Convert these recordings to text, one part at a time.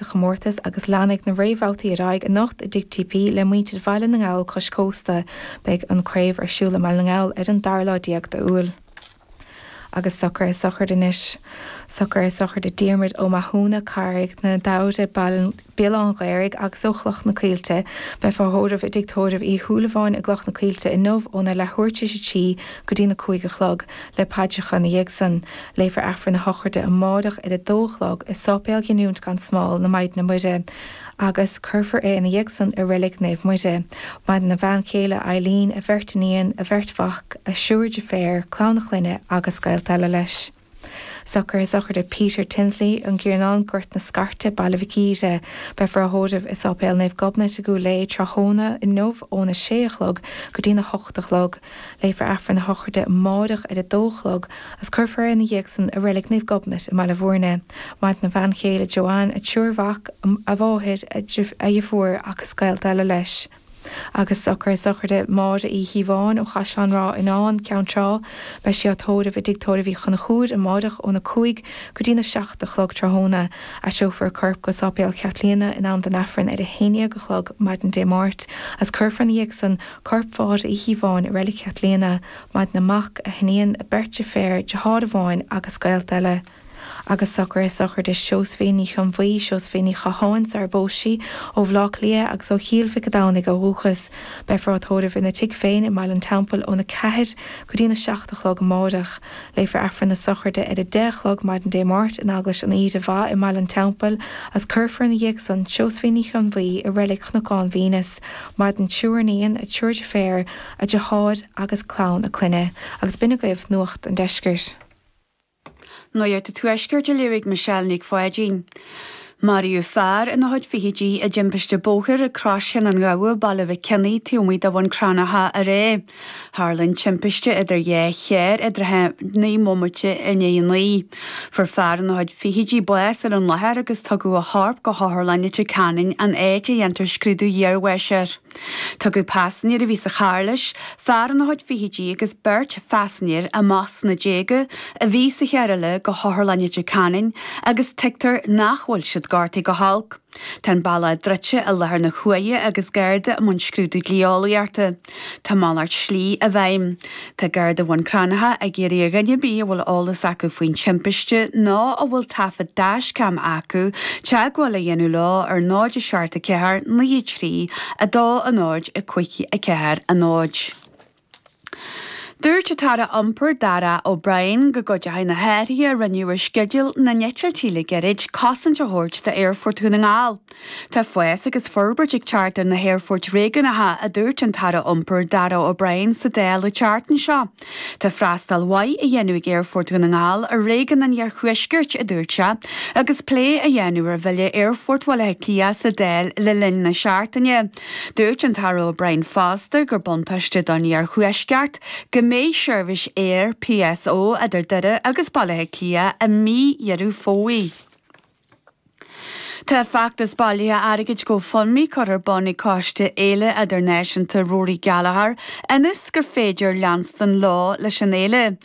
sa chomórtas agus leanfaidh na réamhbhabhtaí ar aghaidh anocht i dTigh TP le muintir Bhaile na nGall cois cósta. Beidh an craobh ar siúl i mBaile na nGall ar an dara lá déag d'Iúil. Agus socairithe sochraide anois. Socairithe sochraide Diarmuid Ó Mathúna, Carraig na Damhde, Béal Átha an Ghaorthaidh agus ó Chloch na Coillte. Beifear á thórramh i dTigh Tórraimh Uí Shúilleabháin i gCloch na Coillte inniu óna leathuair tar éis a trí go dtí na cúig a chlog. Le paidreacha ina dhiaidh san, léifear Aifreann na Sochraide amáireach ar a dó a chlog i Sáipéal Ghiniúint gan Smál na Maighdine Muire agus cuirfear é ina dhiaidh san i Reilig Naomh Muire. Maireann a bhean chéile Eileen, a bheirt iníon, a bheirt mhac, a thriúr deirféar, clann a chlainne agus gaolta eile leis. Socairithe sochraide Peter Tinsley, An Giornán, Gort na Scairte, Baile Mhic Íre. Beifear á thórramh i Sáipéal Naomh Gobnait i gCúil Aodha tráthnóna inniu óna sé a chlog go dtína hocht a chlog. Léifear Aifreann na Sochraide amáireach ar a dó a chlog agus cuirfear é ina dhiaidh san i Reilig Naomh Gobnait i mBaile Mhúirne. Maireann a bhean chéile Joanne, a thriúr mac, a mháthair, a dheirfiúr agus gaolta eile leis. Agus socairithe sochraide Máire Uí Chíobháin ó Chaisleán Ráth Fhionáin, Ceann Trá, beifear á tórramh i dTigh Tórraimh Uí Chonchúir amáireach óna cúig go dtí na seacht a chlog tráthnóna. Aistreofar a corp go Sáipéal Chaitlíona in am don Aifreann ar a haondhéag a chlog maidin Dé Máirt is cuirfear ina dhiaidh san corp Mháire Uí Chíobháin i Reilig Chaitlíona. Maireann a mac, a hiníon, a beirt deirféar, deartháir amháin agus gaolta eile. Agus socairithe sochraide Seosaimhín Ní Chionnbhuí, Seosaimhín Ní Chatháin, sarar phós sí, ó Bhleá Cliath agus ó Chill Mhic a' Domhnaigh ó dhúchas. Beifear á tórramh ina tigh féin i mBaile an Teampaill ón 4 go dtí'n 7 a chlog amáireach. Léifear Aifreann na sochraide ar 10 a chlog maidin Dé Máirt in Eaglais an Aoire Mhaith i mBaile an Teampaill agus cuirfear ina dhiaidh san Seosaimhín Ní Chionnbhuí i Reilig Chnocán Venus, Maireann a triúr iníon, a triúr deirféar, a deartháir agus clann a clainne, agus b'in agaibh nuacht an deiscirt. Nuacht an tuaiscirt, á léamh ag Michelle Nic Pháidín. Maraíodh fear ina chuid fichidí i dtimpiste bóthair ag Crois Chinn an Ghabha, Baile Mhic Cionnaith, taobh amuigh de Bhun Cranncha aréir. Tharla an timpiste idir dhá charr aréir ag naoi mbomaite i ndiaidh a naoi. Fuair fear ina chuid fichidí bás ar an láthair agus tugadh a chorp go hotharlann Leitir Ceanainn an áit a ndéanfar scrúdú iarbháis air. Tugadh paisinéir a bhí sa charr leis, fear ina chuid fichidí agus beirt phaisinéir, amach sna déaga, a bhí sa charr eile go hotharlann Leitir Ceanainn agus tuigtear nach bhfuil siad gortaithe go holc. Tá an bealach druidte i láthair na huaire agus gardaí i mbun scrúdú dlí-eolaíochta. Tá malairt slí i bhfeidhm. Tá Gardaí Bhun Cranncha ag iarraidh ar dhuine ar bith a bhfuil eolas acu faoin timpiste nó a bhfuil taifead dashcam acu teagmháil a dhéanamh leo ar 074 93 2 0 5 4 0. Dúirt an tAire Iompair, Darragh O'Brien, go gcuideoidh na hathruithe a rinneadh ar sceideal na n-eitiltí le gairid cosaint a thabhairt d'Aerfort Dhún na nGall. Tá fás agus forbairt ag teacht ar na haerfoirt réigiúnacha, a dúirt an tAire Iompair, Darragh O'Brien, sa Dáil an tseachtain seo. Tá freastal mhaith á dhéanamh ag Aerfort Dhún na nGall ar réigiún an iarthuaiscirt, a dúirt sé, agus plé á dhéanamh ar Bhille Aerfort Bhaile Átha Cliath sa Dáil le linn na seachtaine. Dúirt an tAire O'Brien fosta gur buntáiste don iarthuaisceart go mbeidh seirbhís aeir PSO idir Doire agus Baile Átha Cliath i mí Dheireadh Fómhair. Tá feachtas bailithe airgid GoFundMe curtha ar bun ag Coiste Fhéile Idirnáisiúnta Rory Gallagher ionas gur féidir leanstan leo leis an fhéile.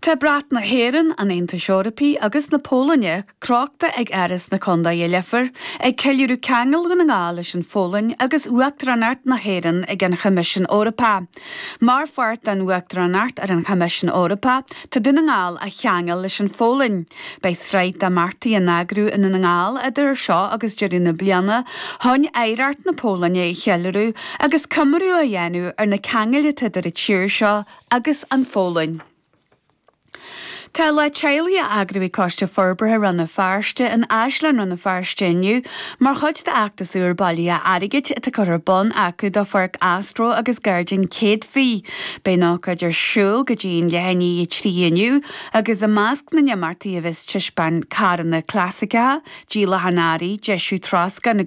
Tá brat na hÉireann, an Aontais Eorpaí agus na Polainne crochta ag Áras na Contae i Leifear, ag ceiliúradh ceangal Dhún na nGall leis an Pholainn agus Uachtaránacht na hÉireann ag an Choimisiún Eorpach. Mar pháirt den Uachtaránacht ar an Choimisiún Eorpach, tá Dún na nGall á cheangal leis an Pholainn. Beidh sraith d'imeachtaí á n-eagrú i nDún na nGall idir seo agus deireadh na bliana chun oidhreacht na Polainne a cheiliúradh agus comóradh a dhéanamh ar na ceangail atá idir an tír seo agus an Pholainn. Tá Lá Teaghlaigh á eagrú ag Coiste Forbartha Rann na Feirste in Áislann Rann na Feirste inniu mar chuid d'fheachtas úr bailithe airgid atá curtha ar bun acu do Pháirc Astro agus Gairdín Céadfaí. Beidh an ócáid ar siúl go dtí an leath i ndiaidh 3 inniu. agus i measc na n-imeachtaí a bheas taispeáint carranna clasaiceacha, díolacháin earraí, deisiú troscáin agus.